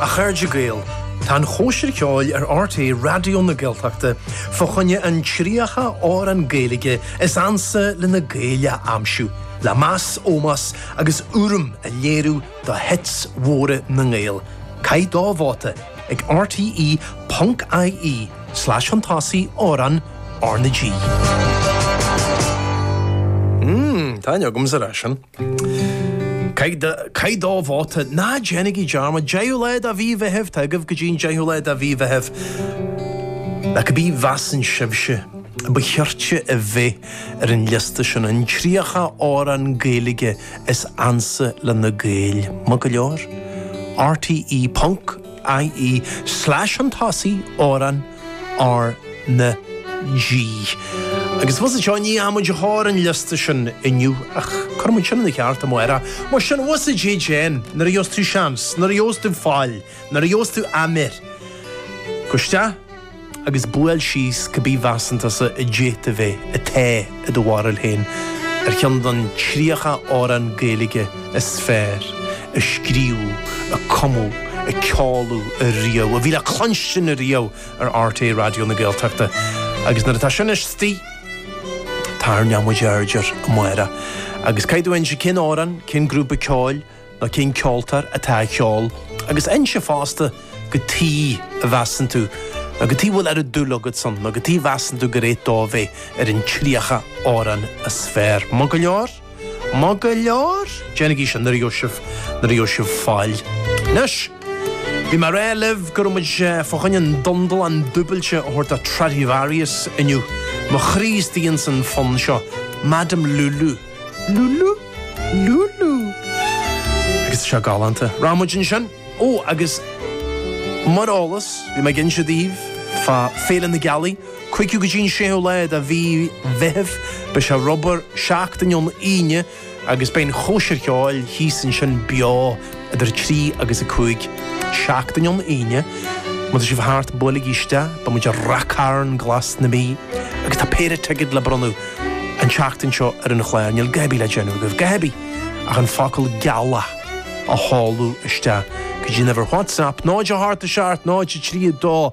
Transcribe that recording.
A chairde Gael, tá an chóisir cheoil ar RTÉ Raidió na Gaeltachta fá choinne an 30 amhrán Gaeilge is ansa le na Gaeil a aimsiú le meas, ómós agus urraim a léiriú do hits mhóra na nGael. Caith do vóta ag rte.ie slash an tosaigh amhrán R na G. Mmm, tá a fhios agamsa é sin. Caith do vóta. Ná déanaigí dearmad. Deichiú lá de mhí Mheithimh. Tá agaibh go dtí an deichiú lá de mhí Mheithimh. Le cibé a mheasann sibhse. ba cheart a bhith ar an liosta sin an tríocha amhrán Gaeilge is ansa le na Gaeil. Maith go leor. RTÉ ponc IE slash an tosaigh, amhrán. R na G. Agus tá a fhios agat, níl muid ag cur an liosta sin inniu ach cuirfimid sin ina cheart amuigh ar a. Mar sin bhfus a J. Jen nuair a gheobhas tú seans, nuair a gheobhas tú faill, nuair a gheobhas tú amar, gabh isteach agus buail síos cibé a mheasann tusa a d'fhéadfadh a bheith, atá. i do bharúil féin, ar cheann den 30 amhrán Gaeilge is fearr a scríobhadh, a cumadh, a ceoladh riamh, a bhí le cluinstin riamh ar RTÉ Raidió na Gaeltachta. Agus nuair atá sin istigh, táthar neamh-muid airdear, a Mháire. Agus caithfidh tú inse cén amhrán, cén grúpa ceoil, nó cén ceoltóir atá á cheol agus inse fosta cad chuige a measann tú nó cad chuige a bhfuil oiread dúil agat ann nó cad chuige a measann tú gur cheart dó bheith ar an tríocha amhrán is fearr. Maith go leor? Maith go leor? Déanaigí sin nuair a gheobhaidh sibh nuair a gheobhaidh sibh faill. Anois, bhí mé ag rá libh go raibh muid fá choinne an dundarlán dúbailte a thabhairt do Tradivarius inniu. Mo chroí istigh san fonn seo, Madame Lulu. Lulu! Lulu! Agus tá sé galánta. Bhí muid ansin! Ó, agus mar eolas, bhí mé ag inse daoibh fá Féile na Gealaí, 5ú go dtí an 6ú lá de mhí Mheithimh. Beidh sé ar obair seachtain ón Aoine agus beidh an chóisir cheoil thíos ansin beo. idir a trí agus a cúig seachtain ón Aoine. Má tá sibh thart, buailigí isteach, beimid i Ráth Chairn Glas na Mí agus tá péire ticéad le bronnadh an tseachtain seo ar an chlár. Níl cibé le déanamh agaibh, cibé, ach an focal gealach a sheoladh isteach go dtí an uimhir WhatsApp 0 8 7 0 3 2